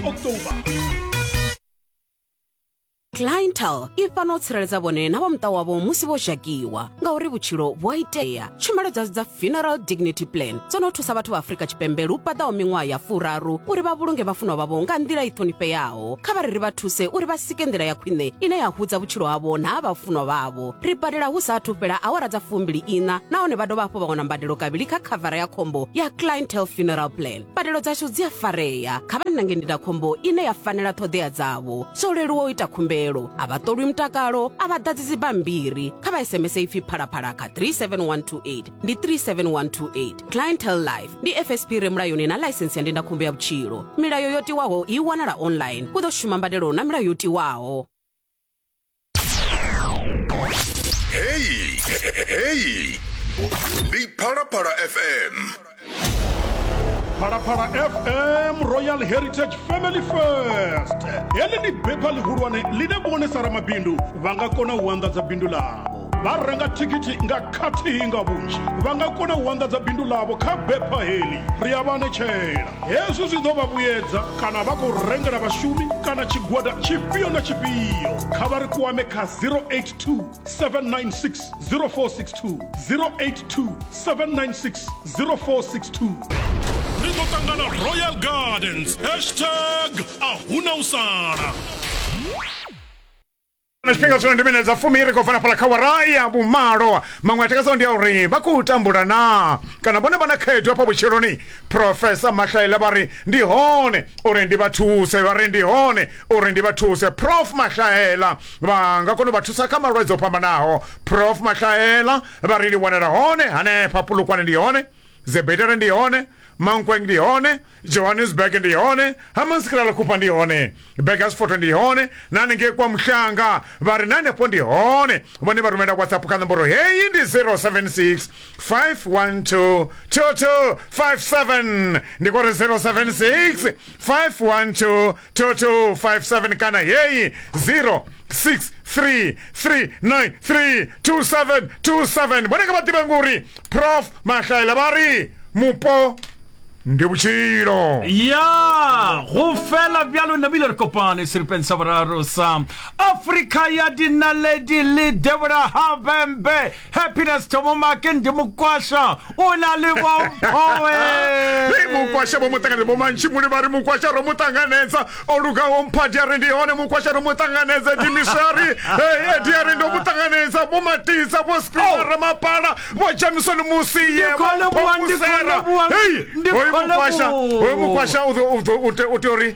october clientel i fana u tsireledza vhone na vha muṱa wavho musi vho dzhakiwa ngauri vhutshilo vhu a itea tshumelo dzashu dza funeral dignity plan dzo no thusa vhathu vha afrika tshipembe lu paḓaho miṅwaha ya furaru uri vha vhulunge vhafunwa vhavho nga nḓila i ṱhonifheaho kha vha ri ri vha thuse uri vha sike nḓila ya khwine ine ya hudza vhutshilo havho na ha vhafunwa vhavho ri badela hu sa athu fhela awara dza fumbili ina nahone vha dovha hafhu vha wana mbadelo kavhili kha khavara ya khombo ya clientel funeral plan mbadelo dzashu dzi a farea kha vha nange ndindakhombo ine ya fanela ṱhoḓea dzavho zwo leluwa u ita khumbelo a vha ṱolwi mutakalo a vha ḓadzi dzibammbiri kha vha sms ipfi phalaphala kha 37128 ndi 37128 clientel life ndi fsp re mulayoni na ḽaisensi ya ndindakhombo ya vhutshilo milayo yo tiwaho i wanala online u ḓo shuma mbadelo na milayo yo tiwaho Hey, hey. Ndi Phalaphala FM. phalaphala fm royal heritage family first heḽi ndi bepha ḽihulwane ḽine vhone sa ramabindu vha nga kona u anḓadza bindu ḽavho vha renga thikhithi nga khathihi nga vhunzhi vha nga kona u anḓadza bindu ḽavho kha bepha heḽi ri a vha netshela hezwi zwi ḓo vha vhuyedza kana vha khou rengela vhashumi kana tshigwada tshifhio na tshifhio kha vha ri kwame kha 082 796 0462 082 796 0462 ri ḓo ṱangana royal gardens hashtag a huna u sala na tshifhinga zwino ndi minedza fumi ri khou bva na fhala kha wara ya vhumalo maṅwe a takazaho ndi a uri vha khou tambula na kana vhone vha na khaedu hafha vhutshiloni profesa mahlaile vha ri ndi hone uri ndi vha thuse vha ri ndi hone uri ndi vha thuse prof mahlaela vha nga kona u vha thusa kha malwadze o fhambanaho prof mahlaela vha ri ndi wanela hone hanefha pulukwane ndi hone Zebedela ndi hone mankweng ndi hone johannesburg ndi hone hamansikilala khupa ndi hone begasfoto ndi hone na hanengei kwa muhlanga vha ri na hanefho ndi hone vhone vha rumela whatsapp kha nomboro heyi ndi 076 512 2257 ndi kore 076 512 2257 kana heyi 0633932727 vhone nga vha ḓivhe nguri prof mahlaela vha ri mupo ndi vhutshilo ya go fela bjalo nabile re kopane seripeng sa boraro sa afrika ya dinaledi le debora habembe happiness thomo make ndi mukwasha o na le bomphowe Hei mukwasha vho muṱanganedza vho mantshimuli vha ri mukwasha ro muṱanganedza o lugaho mphadi a ri ndi hone mukwasha ro muṱanganedza dimisari edi a ri ndo muṱanganedza vho matisa vho spinara mapala vho jamisoni musi ye Ndi khole vho vhuwa, ndi khole musera vhuwa, hei ndi hoyu khole mukwasha vhuwa. hoyu mukwasha u ḓo- u ḓo- u te- u tea uri